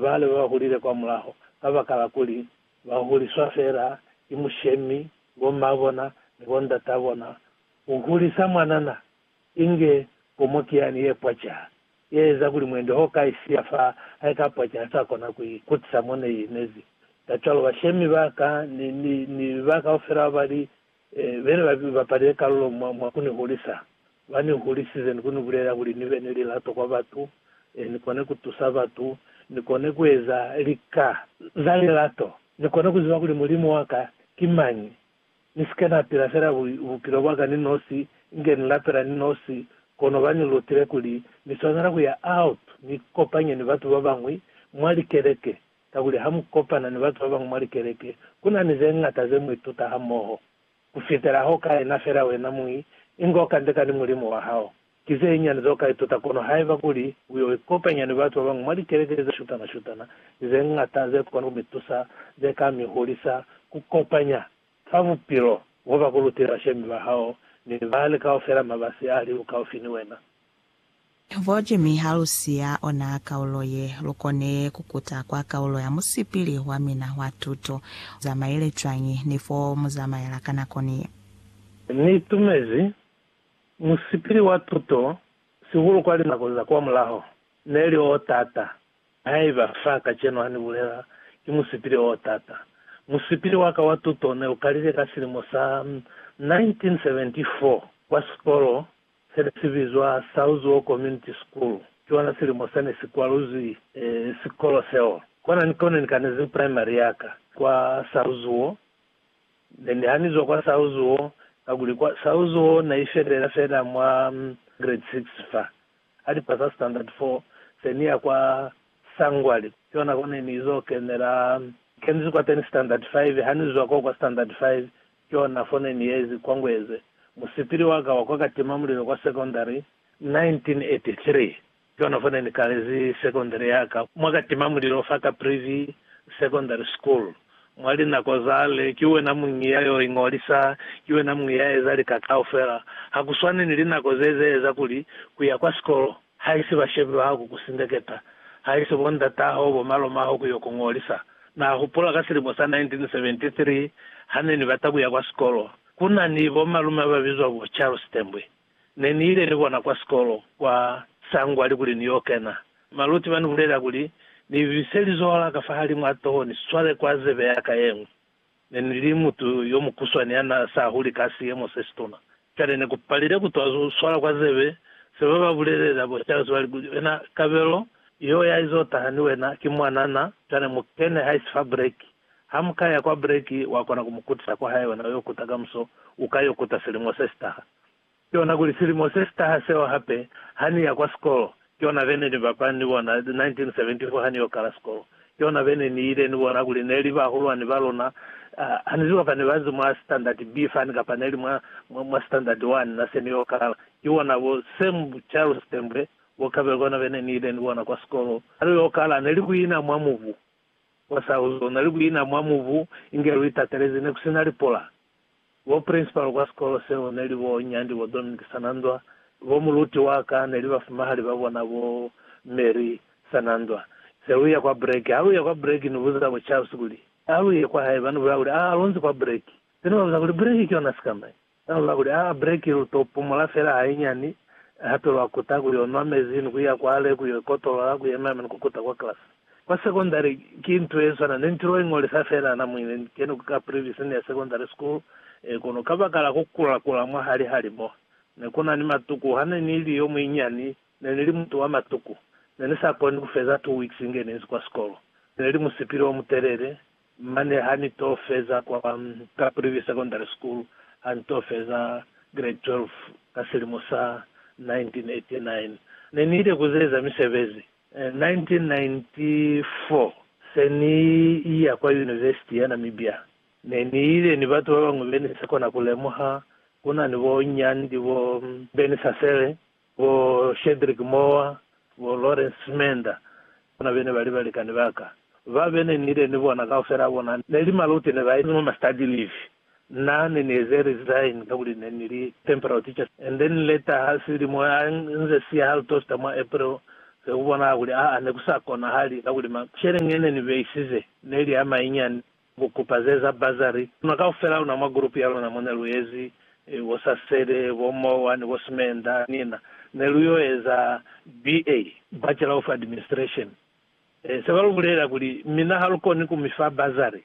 bale ba hulile kwamulaho kabakala kuli ba huliswa feela ki mushemi, bo mma bona ni bo ndata bona. Ku hulisa mwanana inge pomo ki yani ye pwaca, ye eza kuli mwendi ho ka i siya fa hae ka pwaca ha sa kona ku i kutisa mo ne i inezi. Kacwalo bashemi ba ka ni ba kaufela ba li Bene ba bapalile kalulo mwa ku ni hulisa. Ba ni hulisize ni ku ni bulelela kuli ni be ni lilato kwa batu, ni kone ku tusa batu, ni kone ku eza lika za lilato, ni kone ku ziba kuli Mulimu wa ka ki mañi, ni si ke na pila fela bupilo bwa ka ni nosi, inge ni lapela ni nosi. Kono ba ni lutile kuli ni swanela ku ya out ni ikopanye ni batu ba bañwi mwa likeleke Kakuli ha mu kopana ni batu ba bañwi mwa likeleke, ku na ni ze ñata ze mu ituta hamoho. Ku fitela ha u ka ena fela wena muñi, inge u kandeka ni Mulimu wa hao. Ki ze nyani ze u ka ituta, kono haiba kuli u yo ikopanya ni batu ba bañwi mwa likeleke ze shutana-shutana, ki ze ñata ze kona ku mi tusa, ze ka mi hulisa ku kopanya fa bupilo bo ba ku lutile bashemi ba hao ni bali kaufela mabasi a li ukaufi ni wena. Boje mi ha lu siya ona kaulo ye, lu kone ku kuta kwa kaulo ya musipili wa mina wa tuto. Mu zamaile cwañi ni fo mu zamaela ka nako ni ye? Ni itumezi musipili wa tuto, sihulu kwa linako za kwamulaho. Ne li o t'ata. Haiba fa kacenu ha ni bulela, ki musipili o t'ata. Musipili wa ka wa tuto ne u kalile ka silimo sa 1974 kwa sikolo se ne si bizwa Southwell Community School, ki ona silimo sa ne si kwaluzwi sikolo seo. Kona ni ko ne ni kanezi primary ya ka, kwa Southwell. Ne ni hanizwa kwa Southwell, kakuli kwa Southwell na i fetelela fela mwa grade six fa. Ha ni pasa standard four, se ni ya kwa Sangwali, ki ona ko ne ni zo kenela. Ni kenizi kwateni standard five, ha ni zwa koo kwa standard five, Yona fone ni yezi kwa Ngweze, musipili wa ka wa kwa katimamulilo kwa sekondari, 1983. Yona fone ni kalezi sekondari ya ka mwa katimamulilo fa Caprivi Secondary School. Mwa linako zale, ki wena muñi ya yo iñolisa, ki wena muñi ya eza lika kaufela. Ha ku swane ni linako ze, ze eza kuli ku ya kwa sikolo Haisi ba shebilwa ha ku ku sindeketa, haisi bo ndataho, bo malomaho ku yo ku ngolisa. Na hupula ka silimo sa 1973, ha ne ni bata ku ya kwa sikolo. Ku na ni bo malume ba bizwa bo Charles Tembwe. Ne ni ile ni bona kwa sikolo, kwa Sangwali kuli ni yo kena. Maluti ba ni bulelela kuli ni bise lizoho la ka fahalimu a toho ni swale kwa zebe ya ka ye ñwi. Ne ni li mutu yo mukuswani ya n'a sa huli ka siemo se situna. Cwale ne ku palile ku twa swala kwa zebe se ba ba bulelela bo Charles ba li kuli, Wena, kabelo yeo ya izo taha ni wena ki mwanana, cwale mu kene haisi fa breki. Ha mu ka ya kwa breki, wa kona ku mu kutisa kwa hae, wena u yo kuta kamuso, u ka yo kuta silimo se si taha. Ki ona kuli silimo se sitaha seo hape, ha ni ya kwa sikolo, ki ona be ne ni bapala ni bona, 1974 ha ni yo kala sikolo, ki ona be ne ni ile ni bona kuli ne li bahulwani ba luna. Ha ni ziba fa ne ba nzi mwa Standard B fani kapa ne li mwa, mwa, mwa Standard 1, na se ni yo kala. Ki bona bo Sam Charles Tembwe, bo Kabelo, ki ona be ne ni ile ni bona kwa sikolo. Ha lu yo kala, ne li ku ina mwa mubu. Kwa Sahuzo, ne li ku ina mwa mubu inge lu itatelezi, ne ku si na lipola. Bo principal kwa sikolo seo neli bo Nyandi, bo Dominic Sanandwa, bo muluti wa ka neli bafumahali ba bona bo Mary Sanandwa. Se lu ya kwa break, ha lu ya kwa break ni buza bo Charles kuli, A lu ye kwa hae? Ba ni bulaya kuli, Aa, lu nzi kwa break. Se ni ba buza kuli, Break ki yona sika mai? Ba ni bulaya kuli, Aa, break lu to pumula fela hainyani, hape lwa kuta ku yo nwa mezi ni ku ya kwale ku yo ikotolola, ku yema yema ni ku kuta kwa class. Kwa sekondari ki nto ye swana ni nto ye ngolisa fela na mwi ne ni keni ku ka Privy Senior Secondary School, e kono kabakala ku kula-kula mwahali ha limo, ne ku na ni matuku. Ha ne ni li yo muinyani, ne ni li mutu wa matuku. Ne ni sa koni ku feza two weeks inge ni inzi kwa sikolo. Ne li musipili o mutelele. Mane ha ni to feza kwa ka Privy Secondary School, ha ni to feza Grade 12 ka silimo sa 1989, ne ni ile ku zeza misebezi 1994, se ni iya kwa Yunivesiti ya Namibia, ne ni ile ni batu ba bañwi be ni sa kona ku lemuha, ku na ni bo Nyandi, bo Benny Sasele, bo Shedrick Mowa, bo Lawrence Smenda, bona be ne ba li balikani ba ka. Ba be ne ni ile ni bona kaufela bona ne li maluti ne ba ezi mwa ma study leave. Na ne ni eze resign kakuli ne ni li temporal teacher and then later ha silimo ha nze siya ha lu tosta mwa April se ku bonahala kuli aa ne ku sa konahali kakuli ma sheleñi e ne ni beisize ne li a mainyani ku kupa ze za bursary. Luna kaufela luna mwa group ya luna mo ne lu ezi bo Sasele, bo Mowa ni bo Sumenda ni na ne lu yo eza BA, Bachelor of Administration, e se ba lu bulela kuli mina ha lu koni ku mi fa bursary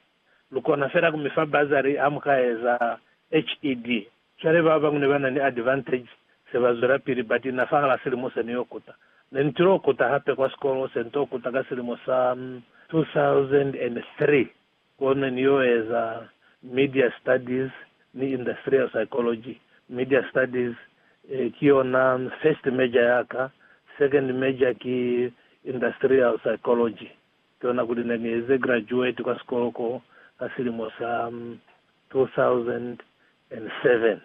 Lu kona fela ku mi fa bursary ha mu ka eza HED. Cwale ba bañwi ne ba na ni advantage se ba zwela pili ba tina fahal'a silimo se ni yo kuta. Ne ni til'o kuta hape kwa sikolo se ni t'o kuta ka silimo sa 2003 ko ne ni yo eza Media Studies ni Industrial Psychology. Media Studies ki yona first major ya ka, second major ki Industrial Psychology. Tona kuli ne ni eze graduate kwa sikolo ko ka silimo sa 2007.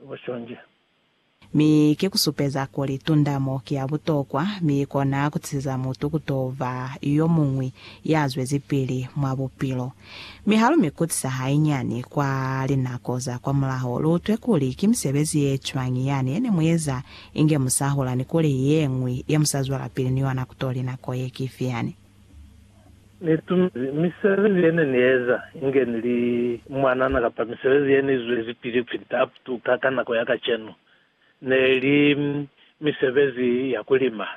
Bo Shonje. Mi ki ku supeza kuli tundamo ki ya butokwa, mi i kona ku tisiza mutu ku to ba yo muñwi ya zwezipili mwa bupilo. Mi ha lu mi kutisa hainyani kwa linako za kwamulaho, lu utwe kuli ki misebezi ye cwañi yani ye ne mu eza Inge musahula ni kuli yeñwi ye musazwelapili ni yona kutoli nako ye ki fiyani. Nitumezi misebezi yene nieza, inge nili mwanana kapa misebezi yene izwezi pili kupita up to ka ka nako ya kacenu. Neli misebezi ya kulima,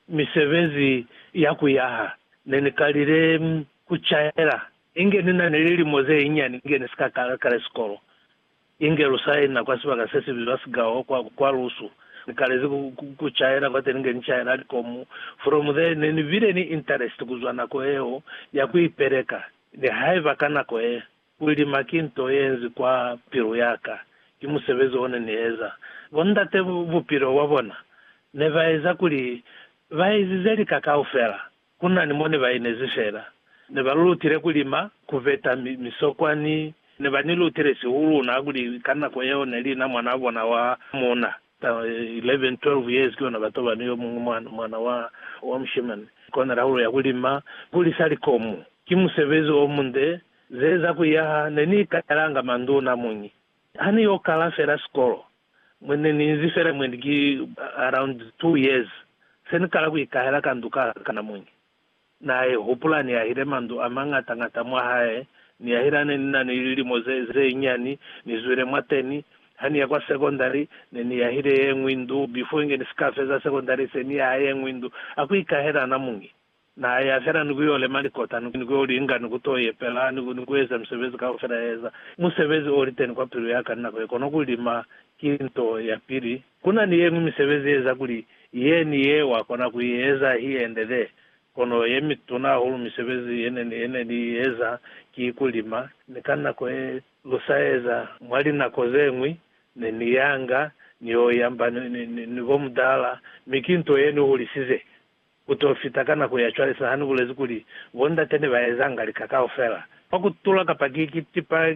misebezi ya kuyaha. Nenikalile kucaela inge ninani lilimo zeinyiani inge nisika kala sikolo. Inge lu saina kwa sibaka se si bizwa Sgao kwa, kwa lusu. Ni kalezi ku, ku, ku caela kwateni nge ni caela likomu. From there, ne ni bile ni interest ku zwa nako yeo ya ku ipeleka, nihaiba ka nako ye, ku lima ki nto ye nzi kwa pilu ya ka. Ki musebezi o ne ni eza. Bo ndate, bupilo bwa bona ne ba eza kuli ba ezize lika kaufela Ku na ni mo ne ba inezi fela. Ne ba lu lutile ku lima, ku veta misokwa ni ne ba ni lutile sihuluna kuli ka nako yeo ne li na mwanaa bona wa muuna. Ka 11, 12 years ki ona ba toba ni yo muñwi mwana, mwana wa, wa mushimani. Kona la hulo ya ku lima, ku lisa likomu. Ki musebezi o munde. Ze za ku yaha, ne ni ikatalanga manduna muñi. Ha ni yo kala fela sikolo, mwe ne ni inzi fela mwendi ki around two years, se ni kala ku ikahela ka ndu ka kana muñi. Na i hupula ni yahile mandu a mañata-ñata mwa hae, ni yahile ha ne ni na ni lilimo ze, ze nyani, ni zwile mwateni. Ha ni ya kwa sekondari, ne ni yahile yeñwi ndu, before inge ni si ka feza sekondari se ni yaha yeñwi ndu. Ha ku ikahela na muñi. Na ya fela ni ku yo lema likota, ni ku yo li inga, ni ku to yepela, ni ku eza misebezi kaufela ya eza. Musebezi o li teni kwa pilu ya ka ni nako ye, kono ku lima ki nto ya pili. Ku na ni ye ñwi misebezi ye eza kuli ye ni ye wa kona ku i eza hi endele, kono ye mituna hahulu misebezi ye ne, ye ne ni i eza ki ku lima. Ni ka nako ye lu sa eza mwa linako ze ñwi, ne ni yanga ni yo yamba ni, ni, ni, ni bo mudala, mi ki nto ye ni hulisize. Ku t'o fita ka nako ya cwale, sahani bulezi kuli, bo ndate ne ba ezanga lika kaufela, kwa ku tula, kapa ki, ki tipa,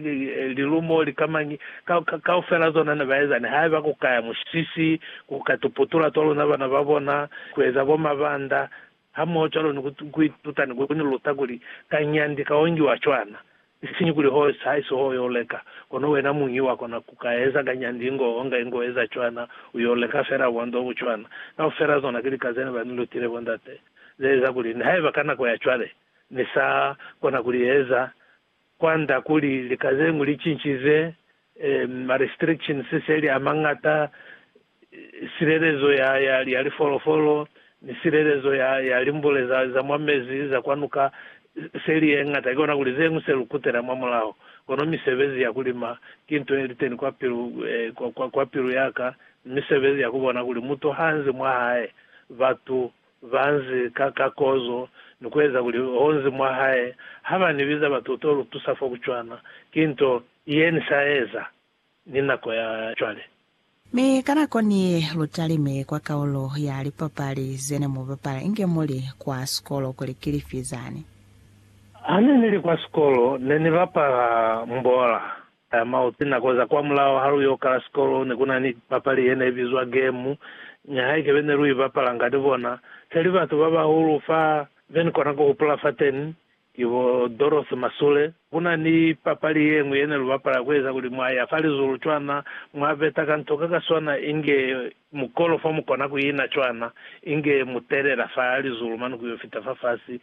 lilumo, likamañi, ka, ka, kaufela zona ne ba eza, nihaiba ku ka ya musisi, ku ka tuputula twa luna bana ba bona, ku eza bo mabanda, hamoho cwalo ni ku, ku ituta ni ku ni luta kuli, ka nyandi ka ongiwa cwana. Isiñi kuli ho sa isi ho yo leka, kono wena muñi wa kona ku ka eza nga nyandi ingo onga ingo eza cwana, u yo leka fela bo ndo bu cwana. Kaufela zona ki lika zene ba ni lutile bo ndate, ze eza kuli nihaiba ka nako ya cwale ni sa kona ku li eza, kwand'a kuli lika zeñwi li cincize, eh, ma restrictions se li a mañata, silelezo ya, ya, ya lifolofolo, ni silelezo ya, ya limbule za, za mwa mezi za kwa nuka, se li ye ñata. Kikona kuli zeñwi se lu kutela mwa mulaho. Kono misebezi ya ku lima ki nto ye liteni kwa pilu, eh, kwa, kwa, kwa pilu ya ka, ni misebezi ya ku bona kuli mutu ha nzi mwa hae, batu ba nzi ka, ka kozo, ni ku eza kuli ho nzi mwa hae. Ha ba ni biza batu, u to lu tusa fo ku cwana. Ki nto ye ni sa eza. ni nako ya cwale. Mi ka nako ni lu talime kwa kaulo ya lipapali zene mu bapala inge muli kwa sikolo kuli ki lifi zani? Hane nili kwa sikolo ne ni bapala mbola ya mauti. Nako za kwa mulao ha lu yo kala sikolo ne ku na ni papali ye ne bizwa gemu. Nihaike be ne lu i bapalanga ni bona se li batu ba bahulu fa be ni kona ku hupula fateni, Ki bo Dorothy Masule. Ku na ni papali ye ñwi ye ne lu bapala ku eza kuli mwa ya fa lizulu cwana, mwa beta ka nto ka ka swana inge mukolo fo mu kona ku ina cwana, inge mu telela fa lizulu mane ku yo fita fafasi.